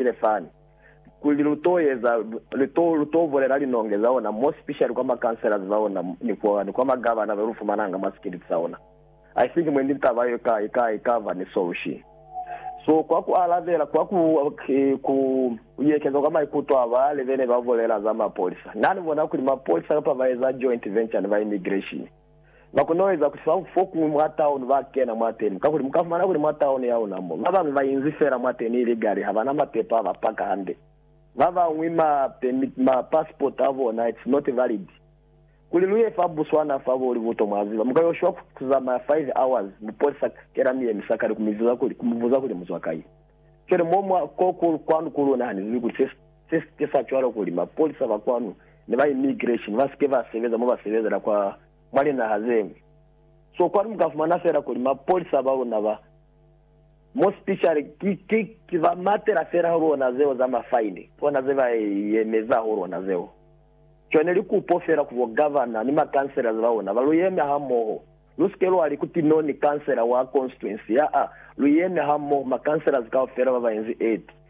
sile fani, kuli lu to eza, lu to, lu to bulela linonge za ona, more specially kwa ma councillors ba ona, ni kwa, ni kwa ma governor ba lu fumananga mwa sikiliti sa ona. I think mwendi ni taba yo i ka, i ka, i ka ba ni solution. So, kwa ku alabela, kwa ku, ku yekeza kwa maikuto a ba le be ne ba bulela za mapolisa, na ni bona kuli mapolisa kapa ba eza joint venture ni ba immigration, Bakonoeza kusa fokuñwi mwa tauni bakena mwateni, kakuli mukafumana kuli mwa tauni yauna mo, babañwi bainzi feela mwateni ilikali habana mapepo abapaka hande, babañwi ma permit, ma passport abona it's not valid. Kuli luye fa Botswana fa bo Livuto mwaziba, muka yo shwa kuzamaya five hours mupolisa kela miyemisa kale kumiziza kuli, kumubuza kuli muzwa kai. Keli mo mwa ko kwanu kuli unahanezibi kuli se. Se si ke sa cwalo kuli mapolisa ba kwanu ni ba immigration ba si ke ba sebeza mo ba sebezela kwa mwa linaha ze ñwi. So kwanu mu ka fumana fela kuli mapolisa ba luna ba, more specially, ki, ki, ki ba matela fela ho lona zeo za mafaini, bona ze ba yemeza ho lona zeo. Cwani li kupo fela ku bo governor ni ma councillors ba luna ba lu yeme ha moho. Lu si ke lwa li ku Tinoni councillor wa constituency, aa, lu yeme ha moho ma councillors kaufela ba ba inzi eti,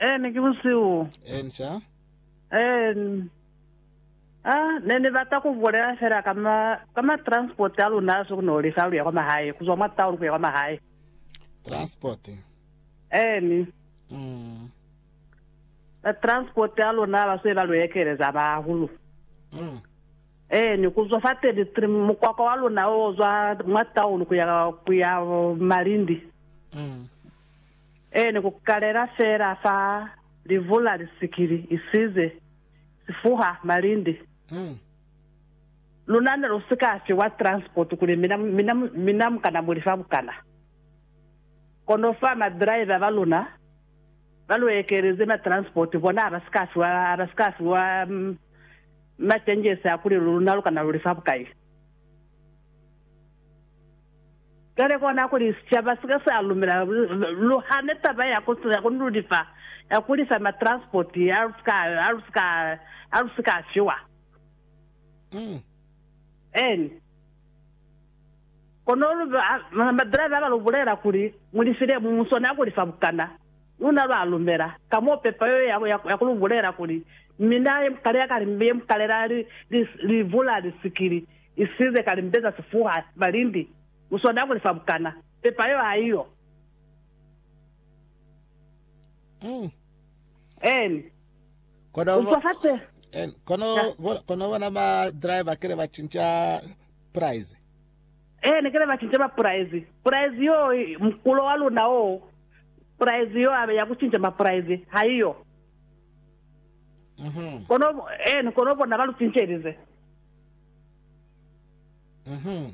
Eh, ne ki busihu. En cha. En. Ah, ne ni bata ku bulela fela ka ma, ka ma transport a luna a sukunoli fa luya kwa mahae, kuzwa mwa town kuya kwa mahae. Transport. En. Mm. Ba transport a luna ba se ba lu ekeleza ba hulu. Mm. En, kuzwa fa 33 mukwakwa wa luna o zwa mwa town kuya, kuya Malindi. Mm. Ee, ni ku kalela feela fa livula lisikili isize si fuha malindi. Luna ne lu si ka fiwa transport kuli mina, mina, mina mu kana mu li fa bukana. Kono fa ma driver ba luna ba lu ekelize ma transport, bona ha ba si ka fiwa, ha ba si ka fiwa ma changes a kuli luna lu kana lu li fa bukai. Cwale kona kuli sicaba sika sa lumela lu hane taba ya ku nululifa ya ku lisa ma transport ha lu si ka, ha lu si ka, ha lu si ka fiwa. Eeni. Kono lu, ha ma driver ba lu bulela kuli, Mu lifile mu, mu swanela ku lifa bukana. Luna lwa lumela, ka mo pepa yeo ya, ya, ya ku lu bulela kuli, Mina ye mukale ya ka, ye mukale la li, li, li vula lisikili, Isize ka limpe za sifuha, malindi, muswada kuli fa bukana, pepa yo ha iyo. En. Kono, Ucwa fa se. en, kono, Ya. bo- kono bona ma driver kele ba cinca price. En, kele ba cinca mapuraizi. Puraizi yo, i- mukulo wa luna o, puraizi yo abe ya ku cinca mapuraizi, ha iyo. Mhm. Kono, en, kono bona ba lu cincelize.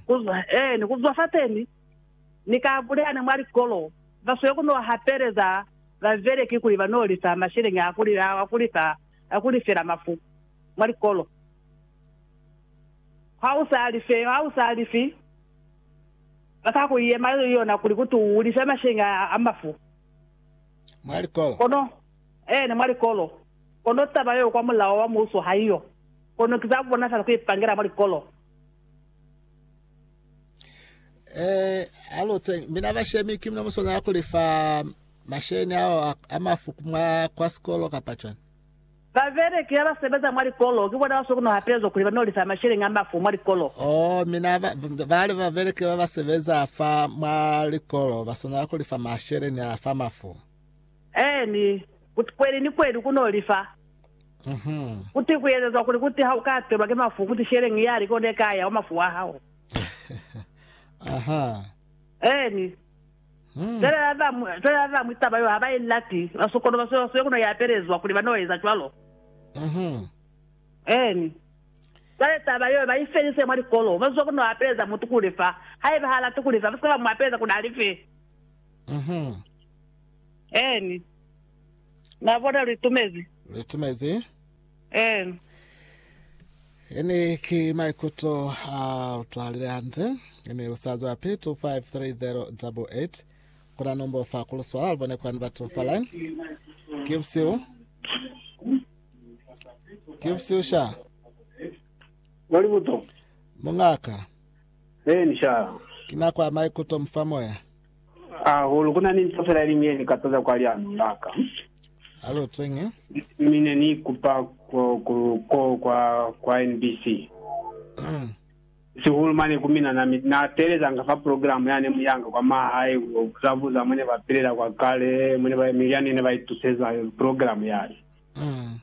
Ku zwa fateni, ni ka bulelana mwa likolo, ba swe ku no hapeleza babeleki kuli ba no lifa masheleñi a ku lifela mafu mwa likolo. Ha u sa lifi, ba ka ku yema yona kuli ku tu u life masheleñi a mafu mwa likolo. Kono taba yeo kwa mulao wa muuso ha i yo. Kono ki za kubonazala ku ipangela mwa likolo. Ee, a lu tenge. Mina bashemi, ki mina mu swanela ku li fa masheleñi ao a, a mafu mwa kwa sikolo kapa cwani? Babeleki ha ba sebeza mwa likolo, ki bona ba swanela ku no hapelezwa kuli ba no li fa masheleñi a mafu mwa likolo. Oh, mina ba, bali babeleki ba ba sebeza fa mwa likolo ba swanela ku li fa masheleñi a fa mafu. Ee, ni kuti kweli ni kweli ku no lifa. Kuti ku ezezwa kuli, kuti ha u ka atelwa ki mafu, kuti sheleñi ya lika o ne ka ya mwa mafu a hao. Eeni. Cwale ba bañwi, cwale ba bañwi taba yo ha ba i lati, ba sokono, ba so, so ku no i apelezwa kuli ba no eza cwalo. Eeni. Cwale taba yo ba i felise mwa likolo, ba zwa ku no apeleza mutu ku lifa. Haiba ha lati ku lifa, ba si ka ba mu apeleza kuli a life. Eeni. Na bona lu itumezi? Lu itumezi? Eeni. Eeni, ki maikuto a utwahalile hande. Eeni, lu sa zwa pi? 253088. Ku na nombo fa ku lu swala, lu bone kwani batu fale. Ki busihu. Ki busihu, sha. Wa libuto? Mungaka, Eeni, sha. ki nako ya maikuto mu fa moya. Hahulu, ku na ni nto fela ye liñwi ye ni ka toza kwa liano la ka. Alo Tenge. Mi ne ni kupa ko, ko, ko kwa, kwa NBC. Mm. Sihulu mane ku mina, na, mi- na teelezanga fa programu yane muyanga kwa mahae, ku zabuza mone ba pilela kwa kale, mone ba, mi yani ne ba ituseza programu yale. Mm.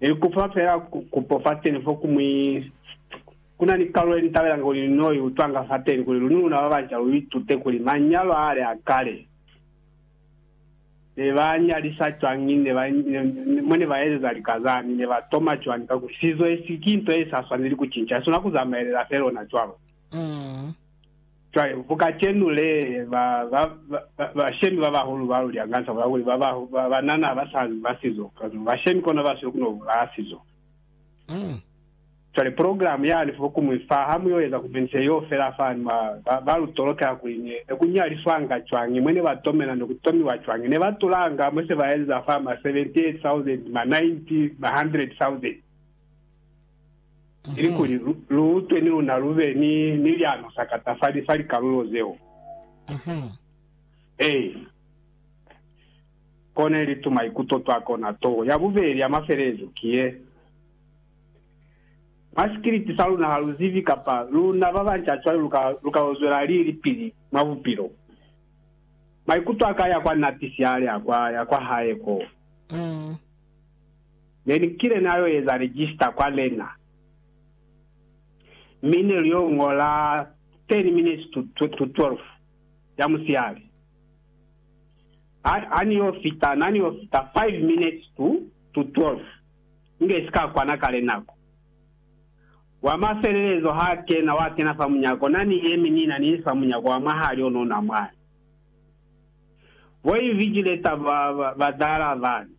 Ni kufa fela kupo fateni fo kumwi. Ku na ni kalulo ye ni tabelanga kuli ni no i utwanga fateni, kuli luni luna ba banca lu itute kuli manyalo a ale a kale ne ba nyalisa cwañi, ne ba, mo ne ba ezeza lika zani, ne ba toma cwañi, kakuli sizo esi ki nto ye sa swaneli ku cinca, i swana ku zamaelela fela ona cwalo. Cwale, ku kacenu le, ba, ba, ba, ba, bashemi ba bahulu ba luli, hanganisa ku la kuli ba, ba, ba banana ha ba sa ba sizo, kano, bashemi kona ba siyo kuno bulaa sizo. Mm. Cwale program yani fo kumwi fa, ha mu yo eza kumenise yoo fela fani, ba, ba, ba lu tolokela kuli ne, ne ku nyaliswanga cwañi, mwe ne ba tomela, ne ku tomiwa cwañi, ne ba tulanga, mwe se ba eza fa, ma 78,000, ma 90, ma 100,000. Ilikuli lu utwe ni luna lu be ni ni liano sa katafali fa likalulo zeo. A kona ili tumaikuto twa kona to. Ya bubeli ya mafelelezo ki ye, Mwa sikiliti sa luna ha lu zibi kapa luna ba banca cwale lu ka lu ka yo zwela lilipili mwa bupilo. Maikuto a ka ya kwa nati siali a kwa ya kwa hae ko. Ne ni kile na yo eza register kwa lena, mi ne lu yo ñola 10 minutes to, to, to 12 ya musihali. Ha, ha ni yo fita, na ni yo fita 5 minutes to, to 12, inge si ka kwana ka le nako. Wa mafelelezo ha kena, wa kena fa munyako, na ni yemi ni na ni fa munyako wa mwahali ono na mwani. Bo invigilator ba, ba, ba dala bani,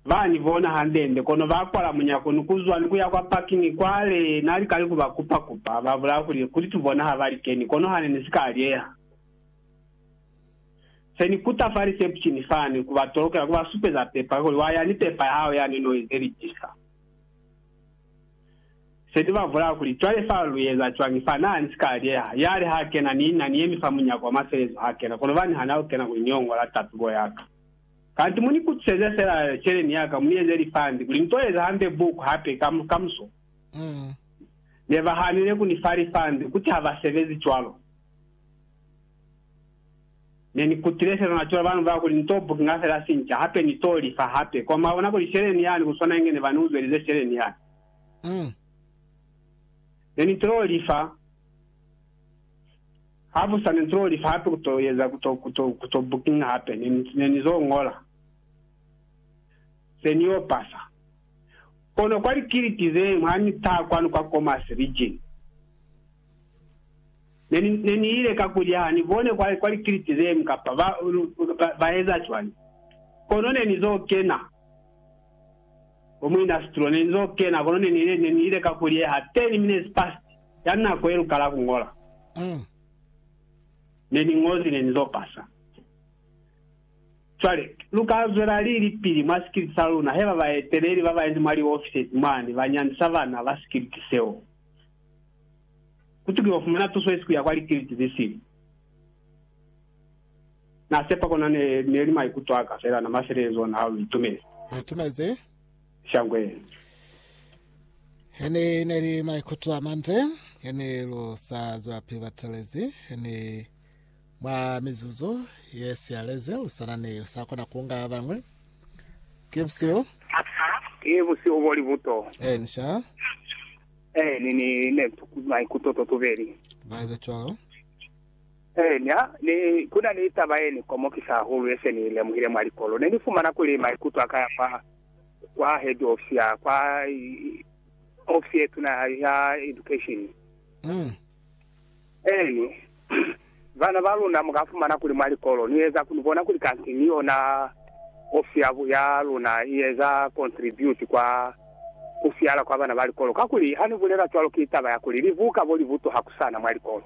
Ba ni bona hande-nde, kono ba kwala munyako ni ku zwa ni ku ya kwa parking kwale na lika ni ku ba kupa-kupa. Ba bulaya kuli, Kuli tu bona ha ba li keni, kono hane ni si ka alyeha. Se ni kuta fa reception fani, ku ba tolokela, ku ba supeza pepa, kuli, Wa ya ni pepa ya hao yani no ize lijisa. Se ni ba bulaya kuli, Cwale fa lu eza cwañi fa? Na ni si ka alyeha. Yale ha kena, ni na ni yemi fa munyako wa mafelezo ha kena, kono ba ni hana ku kena kuli ni yo ngola tatubo ya ka. Kanti mu ni kutuseze fela celeni ya ka, mu ni eze lifandi kuli ni to eza hande buku hape ka, kamuso. Ne ba hanile ku ni fa lifandi, kuti ha ba sebezi cwalo. Ne ni kutile fela na cwalo, ba ni bulela kuli ni to bukinga fela sinca, hape ni to li fa hape. Kono mwa bona kuli celeni yani ku swana inge ne ba ni uzelize celeni yani. Ne ni tilo li fa. Ha bu sa ni zo li fa hape ku to eza, ku to, ku to, ku to booking hape. Ne, ne ni zo ñola ze ni yo pasa. Kono kwa likiliti ze ñwi ha ni taha kwanu kwa Commerce Region, ne ni, ne ni ile ka kulya, ha ni bone kwa, kwa likiliti ze ñwi kapa ba, ba, ba eza cwañi. Kono ne ni zo kena, bo muinasitro, ne ni zo kena, kono ne ni ile, ne ni ile ka kulya ha 10 minutes past. Ka nako yelukala kuñola, neniñozi nenizopasa. Cwale, luka zwelali lipili mwa sikiliti saluna, heba baeteleli babanzi mwa liofisezi mwani banyandisa bana ba sikiliti seo. Kutukiwa fumana tuso yesi kuya kwa likiliti zesili. Nasepa kona ne, neli maikuto aka fela, namafelelezo ona halo itumezi. Itumezi. shangwe. Hene neli maikuto amande, hene lu sa zwelapi batelezi, hene mwa mizuzu ye siyalezi lu sana ni sa kona kunga babañwi. Ki busihu. Ki busihu bo libuto. Ee, ni sha. Ee, ni ni ne maikuto to tubeli. Ba eza cwalo. Ee, ni ha ni, ku na ni taba ye ni komokisa hahulu ye se ni i lemuhile mwa likolo. Ne ni fumana kuli maikuto a ka ya kwa, kwa head office ya kwa ofisi ye tuna ya, ya education. Mm. Eeni, bana ba luna mu ka fumana kuli mwa likolo ni eza, ni bona kuli kanti ni yona ofisi ya, ya luna i eza contribute kwa ku siala kwa bana ba likolo. Kakuli ha ni bulela cwalo ki taba ya kuli libuka bo li butuha ku sana mwa likolo.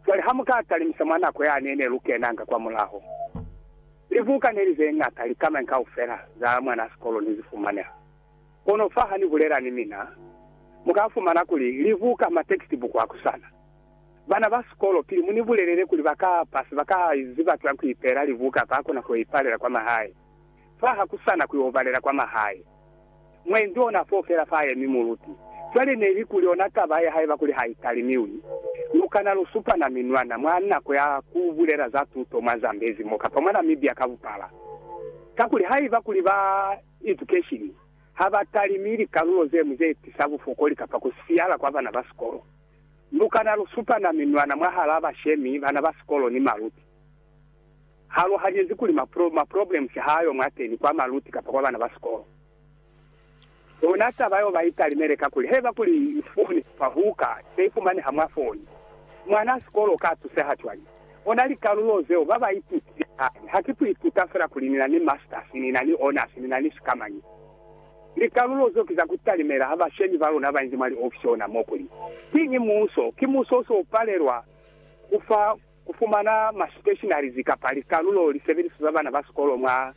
Cwale ha mu ka talimisa mwa nako ya ne ne lu kenanga kwamulaho, libuka ne li ze ñata likamai kaufela za mwana sikolo ne zi fumaneha. Kono fa ha ni bulela ni mina, mu ka fumana kuli libuka, matekstibuku a kusana. Bana ba sikolo, pili mu ni bulelele kuli ba ka pasa, ba ka ziba cwañi ku ipeela libuka, ba kona ku ipalela kwa mahae. fa ha ku sa na ku yo balela kwa mahae. Mwendi o na f'o fela fa yemi muluti. Cwale ne li kuli ona taba ya haiba kuli ha i talimiwi, lu kana lu supana minwana mwa nako ya ku bulela za tuto mwa Zambezi mo kapa mwa Namibia ka bupala. Kakuli haiba kuli ba edukeshini ha ba talimi likalulo ze ñwi ze tisa bufokoli kapa ku siyala kwa bana ba sikolo, lu kana lu supana minwana mwahal'a bashemi, bana ba sikolo ni maluti. halohanyezi kuli ma pro, ma problems ha ayo mwateni kwa maluti kapa kwa bana ba sikolo. Yona taba yeo ba italimele kakuli haiba kuli foni kapa buka se ifumaneha mwa foni, mwana a sikolo uka tuseha cwañi? Ona likalulo zeo ba ba itutile hae. Ha ki ku ituta fela kuli ni na ni masters, ni na ni honors, ni na ni sikamañi. Likalulo zeo ki za ku talimela ha bashemi ba luna ba inzi mwa liofisi ona mo kuli, Kiñi Muso? Ki Muso o si o palelwa ku fa ku fumana ma stationaries kapa likalulo lisebeliso za bana ba sikolo mwa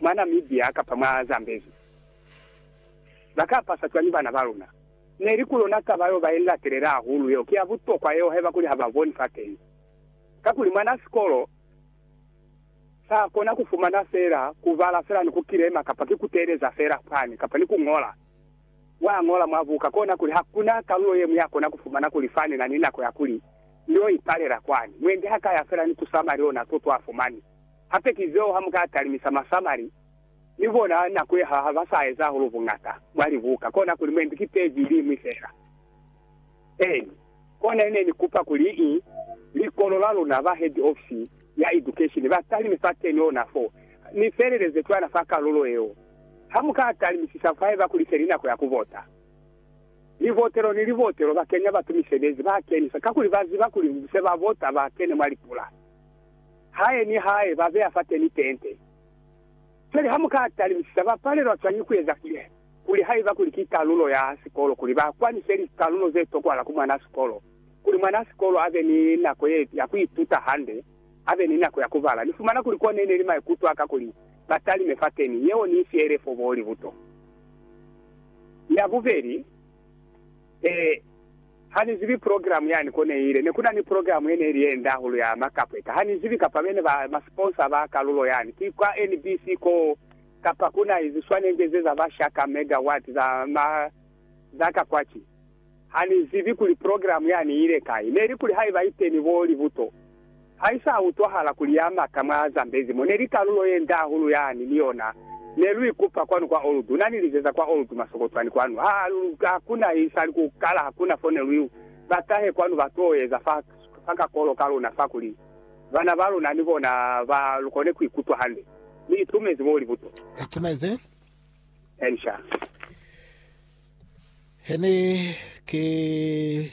mwa Namibia kapa mwa Zambezi. Ba ka pasa cwañi bana ba luna? Neli ku lona taba yeo ba i latelela hahulu yeo, ki ya butokwa yeo haiba kuli ha ba boni fateni. Kakuli mwanaa sikolo sa kona ku fumana feela ku bala feela ni ku kilema kapa ki ku teeleza feela fani kapa ni ku ñola Wa ñola mwa buka kona kuli hakuna kalulo yeñwi ya kona ku fumana kuli fa ni na ni nako ya kuli ni yo ipalela kwani. Mwendi ha ka ya fela ni ku samali ona to to a fumani. Hape ki zeo ha mu ka talimisa masamali ni bona nako ye ha ba sa eza hahulu buñata mwa libuka kona kuli mwendi ki peji iliñwi fela. Eeni. Kona ne ni kupa kuli i likolo la luna ba head office ya education ba talime fateni ona fo, ni feleleze cwana fa kalulo yeo. Ha mu ka talimisisa fahaiba kuli se li nako ya ku vota. Livotelo ni livotelo ba kenya batu misebezi, ba kenisa, kakuli ba ziba kuli se ba vota ba kene mwa lipula. Hae ni hae ba beya fateni tente. Pele ha mu ka talisisa, ba palelwa cwañi ku eza kile? Kuli haiba kuli ki kalulo ya sikolo kuli ba kwanise likalulo ze tokwahala ku mwanaa sikolo, kuli mwanaa sikolo a be ni nako ye, ya ku ituta hande, a be ni nako ya ku bala. Ni fumana kuli ko ne ne li maikuto a ka kuli ba talime fateni. Yeo ni si elefo bo libuto ya bubeli. Ee. Ha ni zibi progilamu yani ko ne ile. Ne ku na ni progilamu ye ne ili ye nde hahulu ya makapweta. Ha ni zibi kapa be ne ba masiponsa ba kalulo yani. Ki kwa NBC koo, kapa ku na iziswanenge ze za ba shaka megawati za ma, za ka kwa ki. Ha ni zibi kuli progilamu yani i ile kai. Ne li kuli haiba iteni bo libuto, Ha i sa utwahala kuli ya mata mwa Zambezi mo ne li kalulo ye nde hahulu ya ni ni yona, ne lu ikupa kwanu kwa Old, na ni lizeza kwa Old masokotwani kwanu. Ha, ha ku na i sali ku kala, ha ku na fo ne lu yu. Ba tahe kwanu ba t'o eza fa, fa kakolo ka luna fa, kuli bana ba luna ni bona ba kone ku ikutwa hande. Mi i tumezi mo libuto. I tumezi. Elisha. He ne ki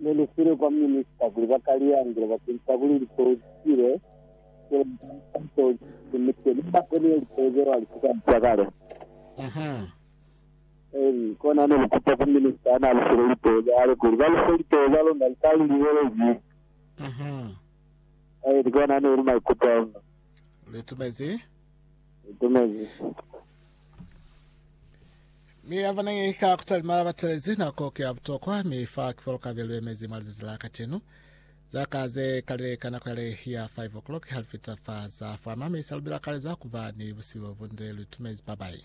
Ne ni file kwa minista kuli ba ka li angula bakenzisa kuli lipeu li sile kuli ba ka li taha seo li sinimizwe mi ba koniwe lipeu zeo hali si ka busa kale. Eli kona ne ni kupa ku minista ya n'a li file lipeu za hae kuli ba li fe lipeu za luna li ka li liwelezi. Eli kona ne li maikuto a luna. Li tumezi. Li tumezi. Mi yaba nang'e ka kutalima batelezi nako ki ya butokwa, mi fa ki fo kabe luemezi mwa lizazi la kacenu. Za ka ze kalile ka nako yale ya 5 o'clock ha lufita fa za fwama, mi sa lubila kaleza kuba ni busihu bunde luitumezi babai.